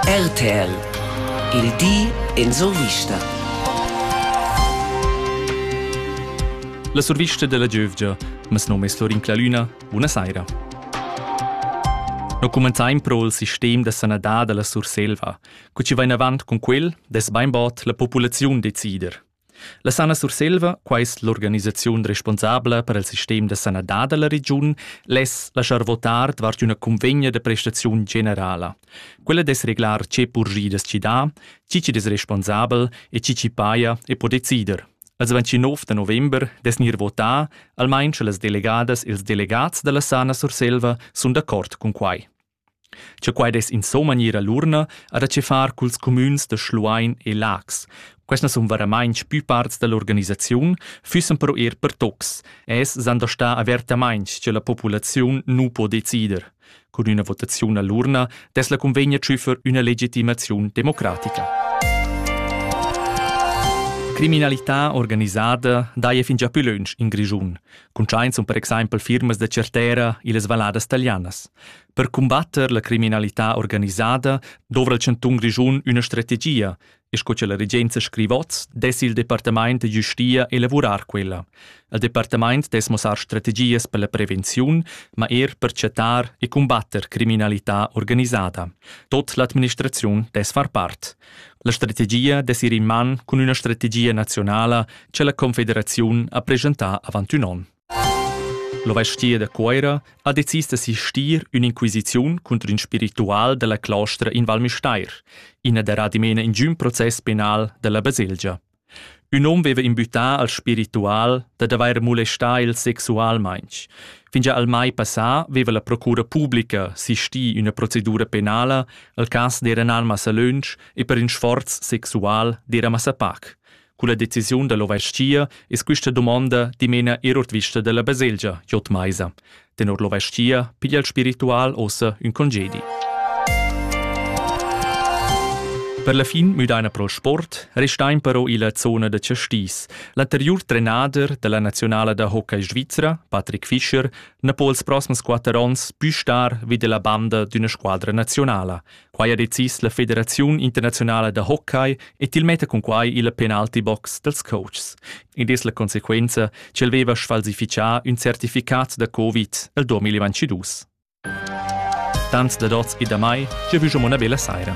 RTL Il di en survista. La survista della giövgia. Mes nome è Florin Clalüna. Buonasera. Noi comenzaim pro il sistem da sanadad della Surselva. Cu ci va in avant con quel, des beinbot la populaziun decider. La Sana Surselva, quai es l'organisaziun responsabla per il sistem da sanadad da la regiun, less laschar votar davart üna cunvegna da prestaziun generala. Quella dess reglar che purgidas chi dà, chi chi'd es responsabel e chi chi paja e po decider. Als 29 da november dess gnir votà, almain sche las delegadas e ils delegats da la Sana Surselva sun d'accord cun quai. Che quai dess insomma gnir a l'urna ha da che far culs cumüns da Schluein e Laax. Questa sun varamainch pü parts da l'organisaziun, füssan però eir per tocs, e es s'han da star avertamainch che la populaziun nu po decider. Cun üna votaziun a l'urna dess la cunvegna tschüffer üna legitimaziun democratica. Criminalità organisada daja fingià pü lönch in Grischun. Cuntschaint sun per exaimpel firmas da certera illas valladas talianas. Per cumbatter la criminalità organisada dovra il chantun Grischun üna strategia, e sco cha la regenza scrivot, dess il Departamaint da giustia elavurar quella. Il Departamaint dess mossar strategias per la prevenziun, ma er per chattar e cumbatter criminalità organisada. Tot l'administraziun dess far part. La strategia dess ir in man cun üna strategia nazionala che la Confederaziun ha preschentà avant ün on. L'ovestia da Cuoira ha decis d'assistir ün'inquisiziun contro ün spiritual della claustra in Val Müstair, ina derà dimena in giun process penal della baselgia. Ün hom veva imbüttà al spiritual dad avair molestà el sexualmaing. Fingià al mai passà veva la procura publica sistì üna procedura penala al cas d'eira nar massa lönch e per ün sforz sexual d'eira massa pac. Culla decisiun da l'ovais-chia es quista dumonda dimena eir ourdvista da la baselgia J. Meiser. Tenor l'ovastia piglia il spiritual ossa ün congedi. Per la fin müdaina pro sport restain però illa zona da Chastis. L'anteriur trenader della nazionala da hockey svizra, Patrick Fischer, na po els prossems quatter ons pü star vi della banda d'üna squadra nazionala. Quai ha decis la Federaziun internaziunala da hockey e til metta cun quai il penalty box dals coaches. Id es la consequenza ch'el veva sfalsifichà ün certificat da Covid el 2022. Tanz da dots e da mai, jeu vus una bella saira.